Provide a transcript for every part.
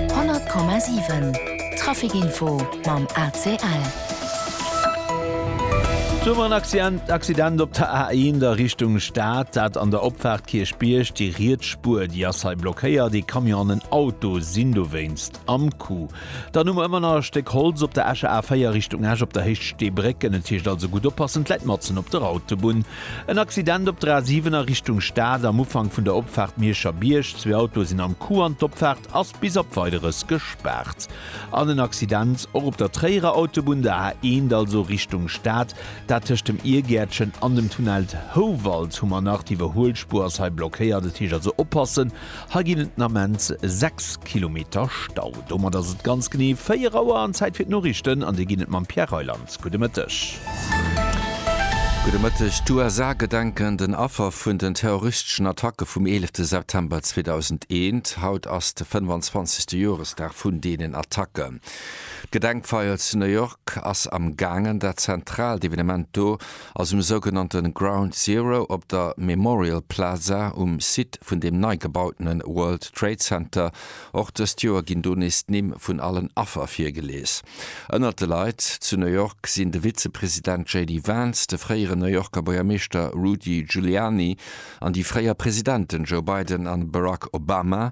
100,7 Trafic Info mam ACL. Zu war en Accident op der A1 a Richtung Stad, dat an der Opfaart Kierchbierg. Déi riets Spuer, déi ass hei blockéiert. Ee Camion an en Auto sinn dowéinst am Coup. Dann hu mer ëmmer nach e Stéck Holz op der Escher A4 Richtung Esch op der Héicht Stee Bréck. Ënnen d'Heescht, also gutt oppassen, d'Läit matzen op der Autobunn. En Accident op der A7 a Richtung Stad am Ufank vun der Opfaart Mierscher Bierg. Zwee Autoe sinn am Coup an d'Opfaart ass bis op Weideres gespaart. An en Accident och op der Tréierer Autobunn, der A1, also Richtung Stad. Dat tëscht dem Iergäertchen an dem Tunnel Houwald hu mer nach. D'Iwwerhuelspuer ass hei blockéiert, et heescht also oppassen. Hei ginn et den Ament 6 Kilometer Stau. Domat ass et ganz genee 4 Auer an Zäit fir d'Noriichten an déi ginn et mam Pierre Reyland. Gudde Mëtteg. Gudde Mëtteg. D'USA gedenken den Affer vun den terroristeschen Attacke vum 11 September 2001. Haut ass de 25. Joresdag vun deenen Attacken. D'Gedenkfeier zu New York ass am gaangen. Dat zentraalt Evenement do Aus dem sougenannte Ground Zero op der Memorial Plaza um Site vun deem nei gebautene World Trade Center. Och dëst Joer ginn do nees d'Nimm vun allen Affer virgelies. Ënnert de Leit zu New York sinn de Vizepresident JD Vance, de fréieren New Yorker Buergermeeschter Rudy Giuliani an déi fréier Presidenten Joe Biden a Barack Obama.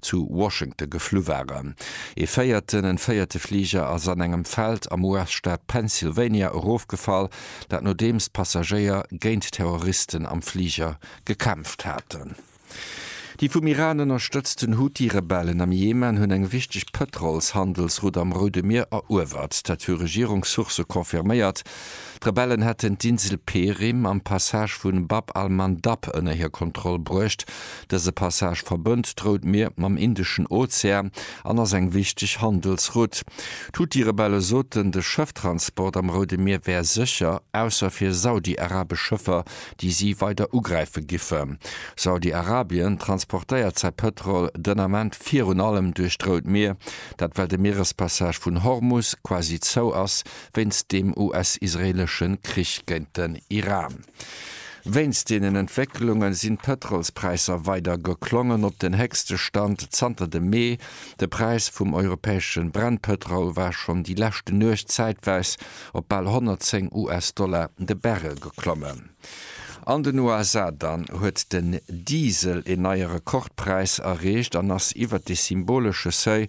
zu Washington geflu waren. Ee véierten, en véierte Fliger ass an engem Feld am US-Staat Pennsylvania erofgefall, dat nodeems d'Passagéier géint d'Terroristen am Fliger gekämpft haten. Déi vum Iran ënnerstëtzten Huthi-Rebellen am Jemen hunn eng wichteg Pëtrols-Handelsroute am Roude Mier eruewert. Dat hu Regierungssourcë confirméiert. D'Rebellen hätten d'Insel Perim am Passage vu Bab al-Mandab ënner hir Kontroll bruecht. Dëse Passage verbënnt d'Rout Mier mam Indeschen Ozean an ass eng wichteg Handelsroute. D'Huthi-Rebelle soten, de Schëfftransport am Roude Mier wär sécher, ausser fir saudi-arabesch Schëffer, déi si weider ugräife giffen. Saudi-Arabien transportéiert säi Pëtrol den Ament virun allem duerch d'Rout Mier. Dat well de Mierespassage vun Hormus quasi zou ass, Wéinst dem US-israeelesche Krich géint den Iran. Wéinst deenen Entwécklunge sinn d'Pëtrolspräisser weider geklommen op den héchste Stand zanter dem Mee. De Präis vum europäesche Brennpëtrol war schonn déi leschte Nuecht zäitweis op bal 110 US-Dollar de Barrel geklommen. An den USA dann huet den Diesel een neie Rekordpräis erreecht an ass iwwert de symbolesche Seuil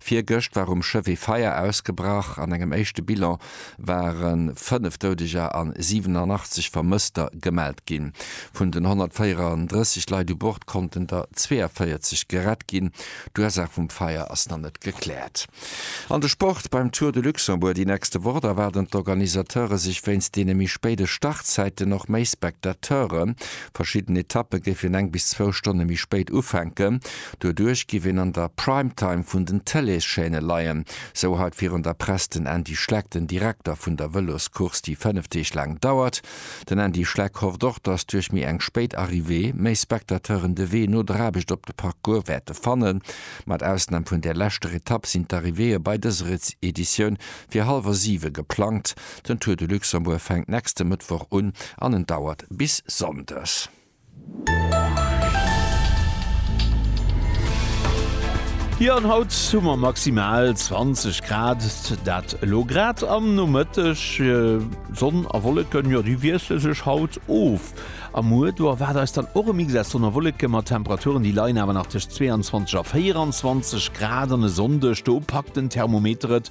Virgëscht war um Schëff ee Feier ausgebrach. An engem éischte Bilan ware 5 Doudeger an 87 Vermësster gemellt ginn. Vun den 134 Leit u Bord konnten der 42 gerett ginn. D'Ursaach vum Feier ass nach net gekläert. An de Sport, Beim Tour de Luxembourg déi nächste Woch, da waarden d'Organisateure sech wéinst deene méi spéide Startzäiten och méi Spectateuren. Verschidden Etappe géifen eng bis zwou Stonne méi spéit ufänken. Doduerch giff een an der Prime Time vun den Tëlees-Chaîne leien, sou haut virun der Press den Andy Schleck, den Direkter vun der Vëloscourse, déi 5 Deeg laang dauert. Den Andy Schleck hofft och, datt duerch méi eng spéit Arrivée, méi Spectateuren de Wee no der Aarbecht op de Parcours wäerte fannen. Mat Ausnahm vun där leschter Etapp sinn d'Arrivéeë bei dëser Editioun fir hallwer 7 geplangt. Den Tour de Luxembourg fänkt nächste Mëttwoch un an en dauert bis Sonndes. Jo an haut hu mer maximal 20 Grad, dat elo grad am Nomëtteg. Sonn a Wolleken, jo déi wiessle sech haut of a muer do erwaart eis dann och e Mix aus Sonn a Wolleke mat Temperaturen, déi leien awer nach tëscht 22 a 24 Grad. An e Sonndeg, do packt den Thermometer et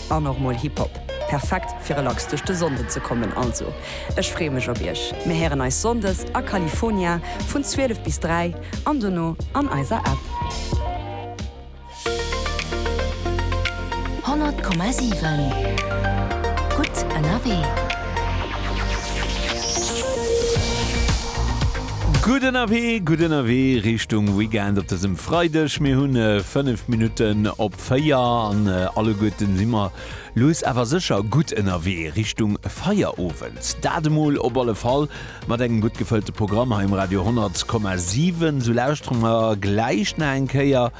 An och mol Hip Hop. Perfekt fir relax duerch de Sonnden ze kommen. Also ech freeë mech op iech. Mir héieren eis Sonndes a California vun 12 bis 3 an dono an eiser App. 100,7 Gutt ënnerwee. Gutt ënnerwee, gutt ënnerwee Richtung Weekend op dësem Freideg. Mir hunn 5 Minutten op. 4 an alleguerten si mer lues awer sécher gutt ënnerwee Richtung Feierowend. Dat emol op alle Fall mat engem gutt gefëllte Programm hei um Radio 10,7. Sou lauschtere mer gläich nach eng Kéier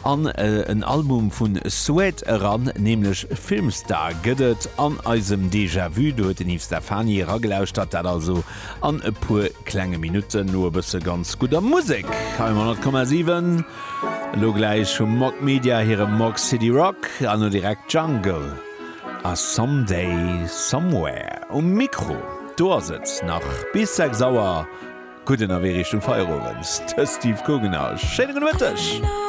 an en Album vun Suede eran, nämlech Filmstar gëtt et an eisem Déjà-Vu. Do huet den Yves Stefani eragelauschtert, dat also. An e puer klenge Minutten no e bësse ganz gudder Musek hei um 100,7. Elo gläich hu Mog Media hire Mog City Rock an elo direkt Jungle a Some Day Somewhere um Mikro. Do ass et nach bis 6 Auer. Gutt ënnerwee Richtung Feierowend, de Steve Guggenau. Schéine gudde Mëtteg!